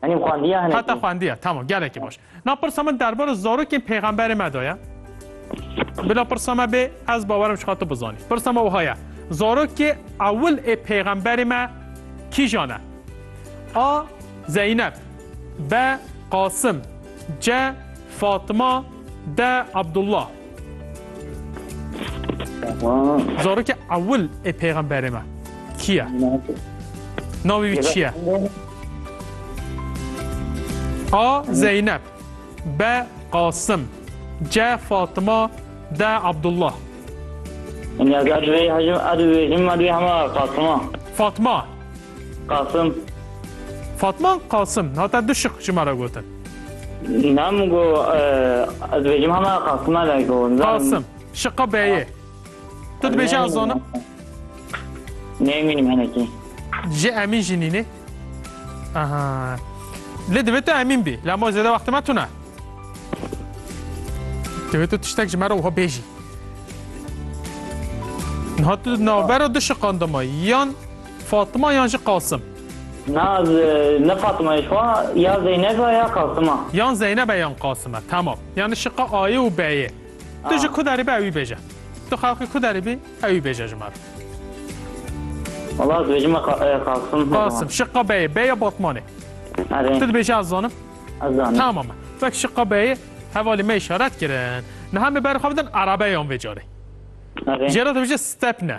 Henî xwendiya hinekî? Heta xwendiya, tamam gelekî baş. Na pirsa min derbara zarokên pêxemberê me de ye. Bila pirsa me bê, ez bawer im ji xwe tu bizanî. Pirsa me wiha ye, zarokê ewil ê pêxemberê me kîjan e? A. Zeyneb B. Qasim C. Fatima De Abdullah. Zarokê ewil ê pêxemberê me kî ye? Navê wî çi ye? A. Zeynep B. Qasim C. Fatima D. Abdullah Fatima Qasim. Fatma Qasim hate du şiq ji me re gotin. Nam go ez dibêjim hema Qasime re go. Qasim şiqa beyê. Tu dibêje ez zanim. Nemînim henekî. Ji Emîn jî nînê. Aha. Lê divê tu Emîn bî. La ma zêde wextime tune. Divê tu tiştek ji me re wiha bêjî. Niha tu navbera du şiqan dima yan Fatima yan jî Qasim? Na, ne Fatima ye xwe, ya Zeyneb e ya Qasim e. Yan Zeyneb e yan Qasim e, temam. Yan şiqa Ayê û B'yê. Tu ji ku derê bî ewî bêje. Tu xelkê ku derê bî ewî bêje ji me re. Wala ez dibêjim me Qasim. Qasim, şiqa B'yê, B ya Batmanê. Erê. Tu dibêje ez zanim? Ez zanim. Temam e. Vek şiqa B'yê hevalê me işaret kirin. Niha me berxwe bidin erebeyan vê carê. Erê. Jê re dibêje stepne.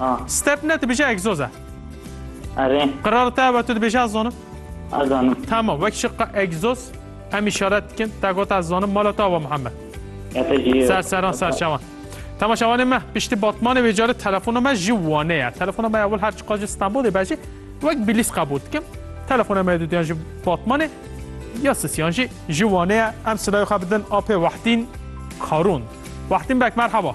A. Step ne dibêje egzoz e. Erê. Qirara te ve tu dibêje ez zanim. Ez zanim. Tamam wek şi qe egzoz em işaret dikin te gota ez zanim mala te ava Muhammed. Ya te jî. Ser seran ser çawan. Tamam şawanê me piştî batmanê wê carê telefona me ji Wanê ye. Telefona me ewil her çiqa ji Stenbolê be jî wek bilîs qebûl dikim. Telefona me dudiyan ji batmanê ya sisiyan jî ji Wanê ye. Em silayê xwe bidin apê Wehdîn Karûn. Wehdîn bek merhaba.